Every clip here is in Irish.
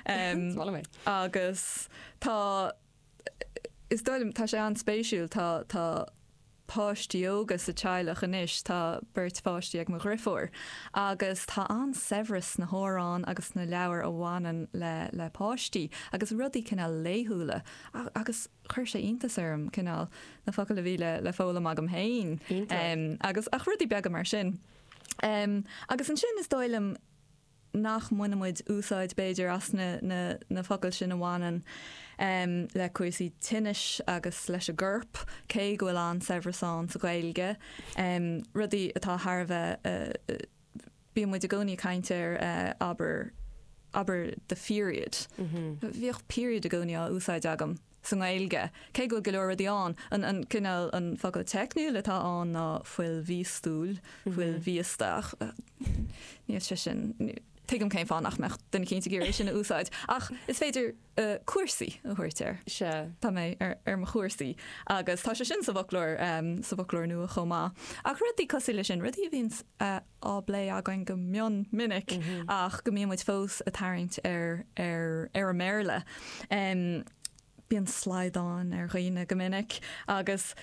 Smál mé. Agus tá, is dóigh liom, tá sé an-spéisiúil, tá, tá páistí óga sa teaghlach anois, tá beirt pháistí ag mo dhriofúr agus tá an-saibhreas sna hamhráin agus sna leabhair a bhaineann le, le páistí agus rudaí cineál laethúla agus chuir sé iontas orm cineál na focail a bhí le, le foghlaim agam féin. Iontach. Agus, ach rudaí beaga mar sin. Agus ansin is dóigh liom, nach mbaineann muid úsáid b'fhéidir as na focail sin a bhaineann le cúrsaí tinnis agus leis an gcorp, cé go bhfuil an-saibhreas ann sa Ghaeilge, rudaí atá thar a bheith, bíonn muid i gcónaí ag caint ar abair, abair the period, bhíodh period i gcónaí á úsáid agam. sa nGaeilge, cé go bhfuil go leor rudaí ann. An cineál, an focal teicniúil atá ann ná fuil mhíostúil, fuil mhíosta, ach níl sé sin, tuigim cén fáth nach mbeadh duine éicínt ag iarraidh é sin a úsáid, ach is féidir cúrsaí a thabhairt air. Sea, tá mé ar mo chúrsaí, agus tá sé sin sa bhfoclóir, sa bhfoclóir nua chomh maith. Ach rudaí cosúil leis sin, rudaí a bhíonns a. á bplé againn go mion minic ach go mbíonn muid fós ag tarraingt ar an mBéarla. Bíonn slaghdán ar dhaoine go minic agus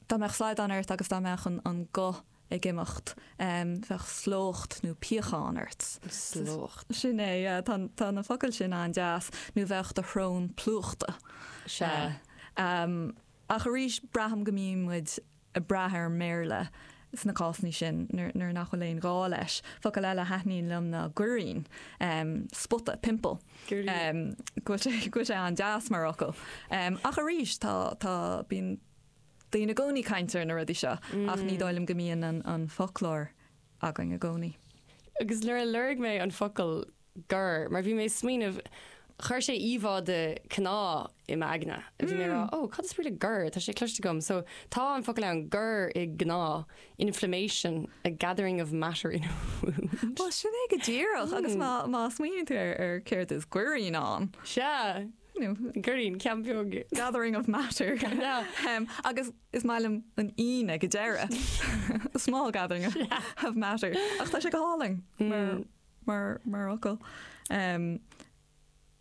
dá mbeadh slaghdán ort agus dá mbeadh an guth ag imeacht, bheadh slócht nó piachán ort. Slócht. Sin é, tá na focail sin an-deas, nó bheadh do shrón plúchta. Sea. Ach arís, braithim go mbíonn muid ag brath ar an mBéarla sna cásanna sin nuair nach bhfuil aon ghá leis. Focal eile a thaitníonn liom ná goirín, spota, pimple. Go bhfuil sé an-deas mar fhocal. Ach arís, tá, tá, bíonn daoine i gcónaí ag caint ar na rudaí seo ach ní dóigh liom go mbíonn an foclóir againn i gcónaí. Agus nuair a lorg mé an focal gor, mar bhí mé ag smaoineamh, chuir sé íomhá de cneá i m'aigne. Bhí mé ag rá, oh, cad is brí le gor? Tá sé cloiste agam. So, tá an focal ann, gor i gcneá, inflammation, a gathering of matter in a wound. Bhuel, sin é go díreach, agus má, má smaoiníonn tú ar, ar céard is goirín ann. Sea, goirín, ceann beag. Gathering of matter. Ná. Um, agus is maith liom an ín ag an deireadh. A small gathering of matter. Ach tá sé go hálainn, mar mar fhocal.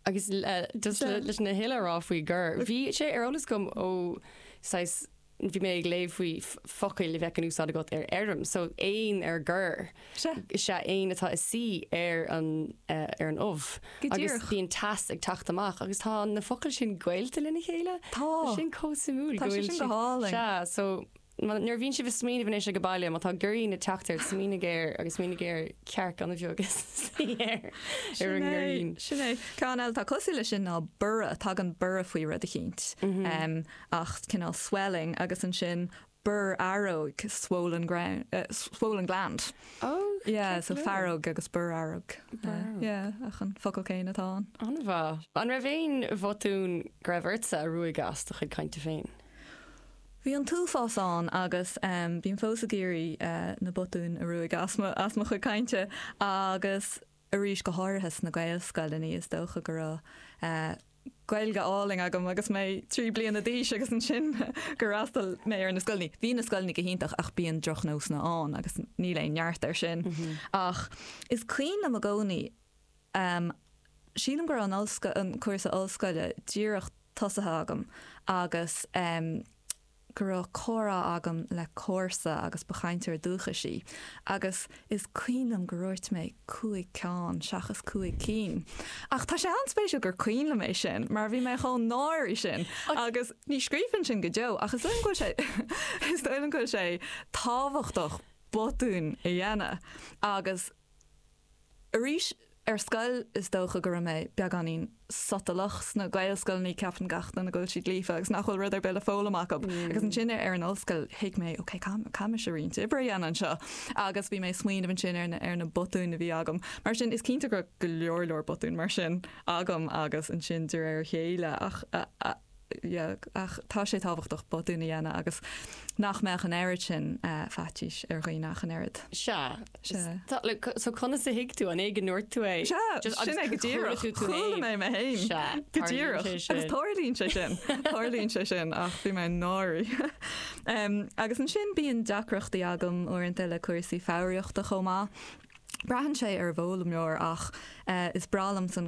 Agus leis na huile a rá faoi gor, bhí sé ar eolas agam ó saghas, bhí mé ag léamh faoi focail a bheadh in úsáid agat ar fheirm, so éan ar gor, is ea éan atá ag suí ar an ubh. Go díreach. Agus bíonn teas ag teacht amach agus tá na focail sin gaolta lena chéile. Tá. Tá sin chomh suimiúil. Tá sé sin go hálainn. Sea, so. Nuair a bhíonn tú ag smaoineamh anois ag an baile, má tá goirín ag teacht ort, smaoinigh ar, agus smaoinigh ar, cearc atá ina suí ar, ar an ngoirín. Sin é. Ceann eile atá cosúil leis sin ná borradh. Tagann borradh faoi rud eicínt, saghas cineál swelling, agus ansin borrfhearg, swollen gland, swollen gland. Ó, ceart go leor. Fearg agus borrfhearg. Ach an focal céanna atá ann. An-mhaith. An raibh aon bhotún go raibh ortsa a ruaigeadh as do chuid cainte féin? Bhí an t-uafás ann agus bím fós ag iarraidh na botúin a ruaigeadh as mo chuid cainte agus arís go háirithe sna Gaelscoileanna. Is dócha go raibh Gaeilge álainn agam agus mé trí bliana d'aois agus ansin gur fhreastail mé ar na scoileanna. Bhí na scoileanna go hiontach ach bíonn drochnósanna ann agus níl aon neart air sin. Ach is cuimhin liom i gcónaí, Em, sílim go raibh an ollscoil, an cúrsa ollscoile díreach tosaithe agam agus em go raibh comhrá agam le comharsa agus ba chainteoir dúchais í agus is cuimhin liom gur dhúirt mé cúig ceann seachas cúig cinn ach tá sé an-spéisiúil gur cuimhin liom é sin mar bhí mé chomh náirithe sin agus ní scríobhfainn sin go deo ach is dóigh liom go bhfuil sé, is dóigh liom go bhfuil sé tábhachtach botúin a dhéanamh agus. Arís, ar scoil is dócha go raibh mé beagáinín sotalach, sna Gaelscoileanna ceapann gach duine go bhfuil siad líofa agus nach bhfuil rud ar bith le foghlaim acu. Agus ansin ar an ollscoil thuig mé ok, caithfidh mise roinnt oibre a dhéanamh anseo agus bhí mé ag smaoineamh ansin ar na ar na botúin a bhí agam. Mar sin, is cinnte go raibh go leor leor botún mar sin agam agus ansin de réir a chéile ach. dhéag. Ach tá sé tábhachtach botún a dhéanamh agus nach mbeadh an oiread sin faitís ar dhaoine ach an oiread. Sea. Sea. So conas a thuig tú? An é go ndúirt tú é? Sea. Sin é go díreach. Chuala mé mé fhéin. Sea. Go díreach. Tarlaíonn sé sin. Agus tarlaíonn sé sin. Tarlaíonn sé sin ach bhí mé an-náirithe. Agus ansin bíonn deacrachtaí agam uaireanta le cúrsaí foghraíochta chomh maith. Braitheann sé ar an bhfoghlaimeoir ach is breá liom san